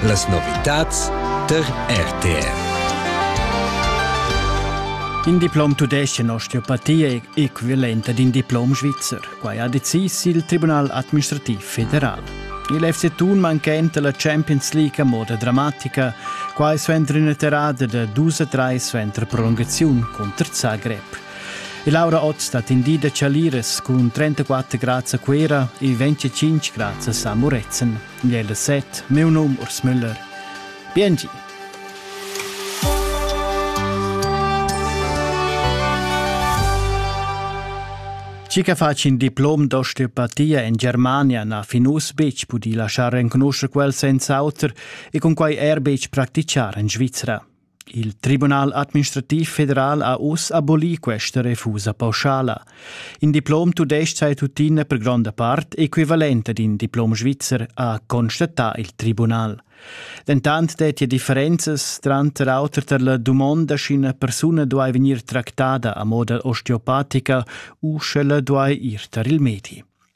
Las novitads tar RTR. In diplom tudesc in osteopatia è equivalente ad in diplom svizzer. Quai ha decis il Tribunal administrativ federal. Il FC Thun manchenta la Champions League a moda dramatica, quai suenter ina terrada da dus a trais suenter prolungaziun cunter Zagreb. E Laura Otz ha tendì da Chaliras cun 34 grads a Cuera e 25 grads a Muretzen. Gliella set, meu num Urs Müller. Biengi! Cica faci in diplom d'osteopatia in Germania na fin uss betg pudì laschar renconuscher quel senza auter e cun quai er betg practichar en Svizra. Il Tribunal administrativ federal ha uss abolì questa refusa pauschala. In diplom tudestg è tuttina per gronda part equivalent ad in diplom svizzer, ha constatà il tribunal. Dentant dettia differenzas tranter auter tar la dumonda sch'ina persuna duai vegnir tractada a moda osteopatica u sch'ella duai ir tar il medi.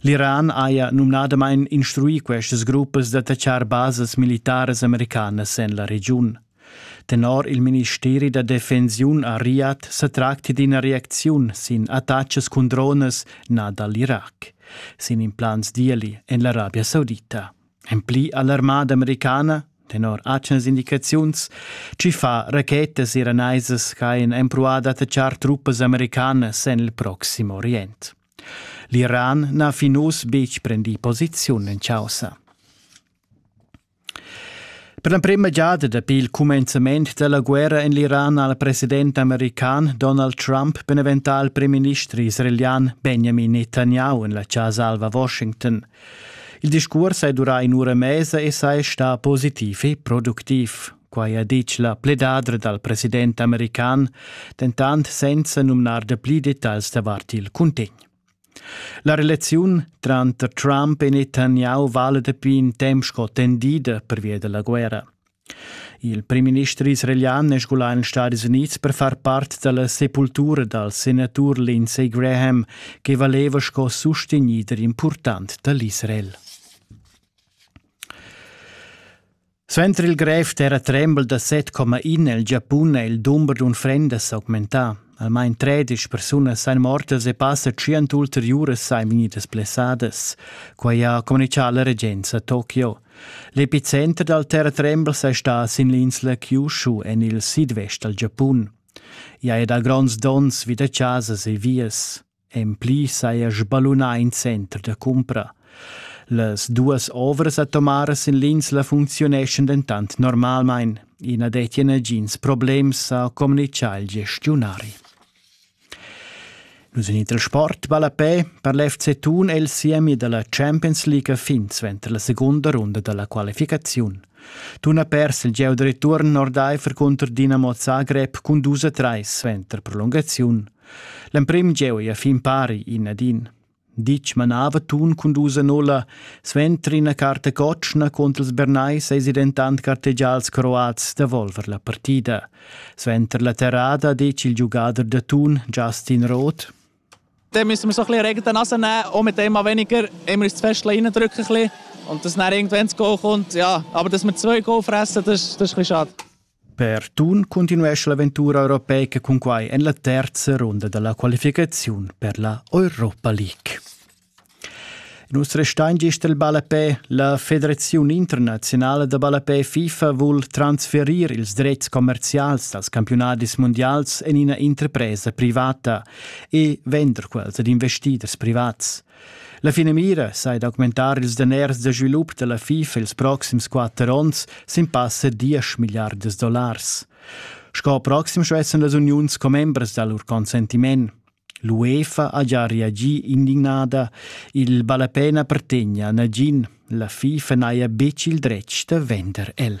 L'Iran haja numnadamain instruì questas gruppas d'attachar basas militaras americanas en la regiun. Tenor il ministeri da defensiun a Riyadh sa tracti d'ina reacziun sin attacks cun dronas nà da l'Irac, sin implants d'ieli en l'Arabia Saudita. En pli ha l'armada americana tenor atgnas indicaziuns, ci fa rachetas iranaisas ch'hajan empruà d'attachar truppas americanas en il Proxim Orient. L'Iran n'ha fin uss betg prendì posiziun en chaussa. Per l'emprima giada dapi il cumenzament da la guerra en l'Iran ha il president american Donald Trump beneventà il primminister israelian Benjamin Netanyahu en la Casa Alva Washington. Il discurs hai durà in'ura e mesa e sei stà positiv e productiv. Quai ha ditg la pledadra dal president american, dentant senza numnar dapli detagls davart il cuntegn. La relaziun tranter Trump e Netanyahu vala dapi in temp sco tendida pervia da la guerra. Il primminister israelian è sgulà en Stati Unids per far part da la sepultura dal senatur Lindsey Graham che valeva sco sustegnider important da l'Israel. Suenter il grev terratrembel da 7,1 è il Giapun er il dumber d'unfrendas s'augmentà. Almain tredisch persunas èn mortas e passa tschient ulteriuras sain vegnidas blessadas. Quai ha communitgà la regenza a Tokio. L'epicenter dal terratrembel è stà sin l'insla Kyushu en il sidvest dal Giapun. I ha dà gronds donns vi da chasas e vias. En pli saja sballunà in center da cumpra. Las duas ovras atomaras en l'insla funcziuneschan dentant normalmain. I na dettia nagins problems, ha communitgà il gestiunari. Nus en il trasport ballapè per l'FC Thun è il siemi da la Champions League a fin suenter la segunda runda da la qualificaziun. Thun ha pers il gieu da return ordaifer cunter Dinamo Zagreb cun 2 a 3 suenter prolungaziun. L'emprim jeu ei a fin pari in ad in. Ditg manava tun cun dus anola, suenter ina carta cotschna contra ils Bernays eisi dentant gartegià als Croats da volver la partida. Suenter la terrada detg il giugader da tun Justin Roth. Dann müssen wir so ein bisschen Regen in die Nase nehmen, auch mit dem mal weniger. Immer ist das Fest reindrücken ein bisschen und dass dann irgendwann das Goal kommt. Ja, aber dass wir zwei Goal fressen, das, das ist ein bisschen schade. Per Thun cuntinuescha l'aventura europeica cun quai en la terza runda dalla qualificaziun per la Europa League. In us restain gist il ballapè. La Federaziun internazionala da ballapè FIFA vul transferir ils dretgs commercials dals campiunadis mundials en ina interpresa privata e vender quels ad investiders privats. La finamira sai d'augmentar ils daners da svilup da la FIFA ils proxims quatter onns sin passa diesch milliardas dollars. Sco proxim schwätzen las uniuns commembras da lur consentiment. L'UEFA ha già reagì indignada. Il ballapena pertegna nagin. La FIFA n'haja betg il dretg da vender el.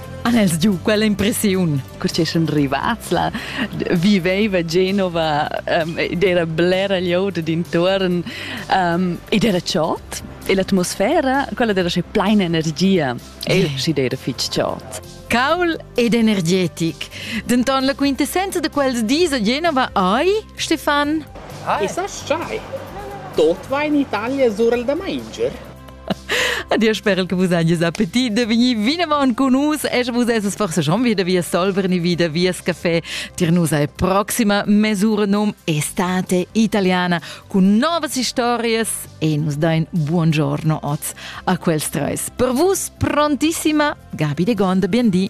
Han els giu quella impressiun? Cur sun rivats là, viveva Genova um, ed era blera glieud d'intuorn um, ed era chod. E l'atmosfera, quella era sche pleina energia. E si era fitg chod. Caul ed energetic. Denton la quintessenza de quels dis a Genova ai, Stefan? Ai, sa sai. Tot va in Italia surel da manger. Ad dir sper che vus agis appetit de vegnir vinavant con nus e sche vus esses forse schon wieder via Solver ni wieder vias café tir nus ai proxima mesura num estate italiana con novas historias e nus dain buongiorno oz a quels treis per vus prontissima Gabi de Gonda bien di